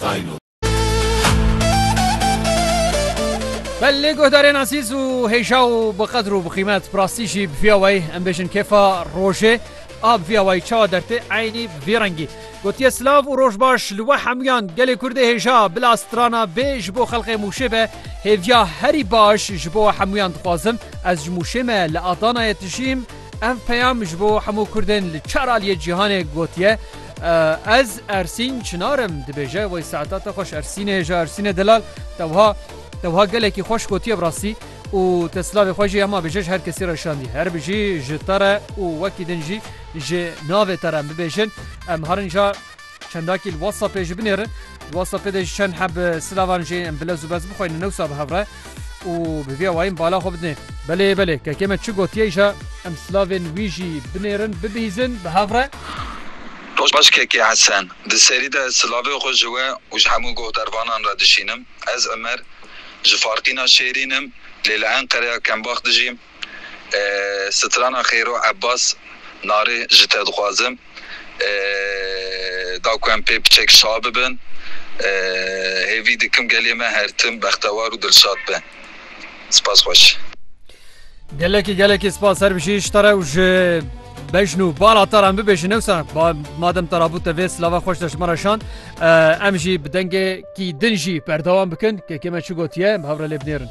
Tayno. Belê guhdarên azîz û hêja û bi qedr û bi qîmet bi rastî jî bi vîya wayî em bêjin kêfa rojê a bi vîya wayî çawa dertê eynî bi vî rengî gotiye silav û roj baş li we hemûyan gelê kurdê hêja bila strana bê ji bo xelqê mûşê be hêviya herî baş ji bo we hemûyan dixwazim ez ji mûşê me li adanayê dijîm Ev peyam ji bo hemû Kurdên li çar aliyê cîhanê gotiye Ez Ersîn Çinar im dibêje wey saeta te xweş Ersînê hêja Ersînê delal te wiha te wiha gelekî xweş gotiye bi rastî û te silavê xwe jî hema bêje ji her kesî re şandî her bijî ji te re û wekî din jî ji navê te re em bibêjin em herin ja Çendakî li WhatsAppê ji binê re. Li WhatsAppê de ji çend heb silavan jê em bilez û bez bixweynin newsa bi hev re û bi vî awayî em bala xwe bidinê. Belê belê kekê me çi gotiye îja em silavên wî jî binêrin bibihîzin bi hev re. Roj baş kekê Hesen. Di serî de ez silavê xwe ji we û ji hemû goh dervanan re dişînim. Ez Imer. Ji Farqîna Şêrîn im lê li Enqereya Kembax dijîm. Strana Xêro Ebas Narê ji te dixwazim da ku em pê piçek şa bibin. Hêvî dikim gelê me her tim bextewar û dilşad be. Spas xweş. Gelekî gelekî spas her bijî ji te re û ji bejn û bala te re em bibêjin ewsa madem te rabû te vê silava xweş de ji me re şand em jî bi dengekî din jî berdewam bikin kekê me çi gotiye em hev re lê binêrin.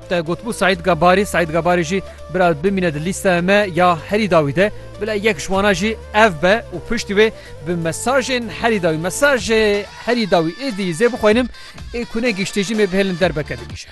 Te gotbû Seîd Gabarî, Seîd Gabarî jî bila bimîne di lîsteya me ya herî dawî de, bila yek ji wana jî ev be û piştî wê bi mesajên herî dawî, mesajê herî dawî êdî zê bixwînim, ê ku ne giştê jî mê bihêlin derbeke din îşe.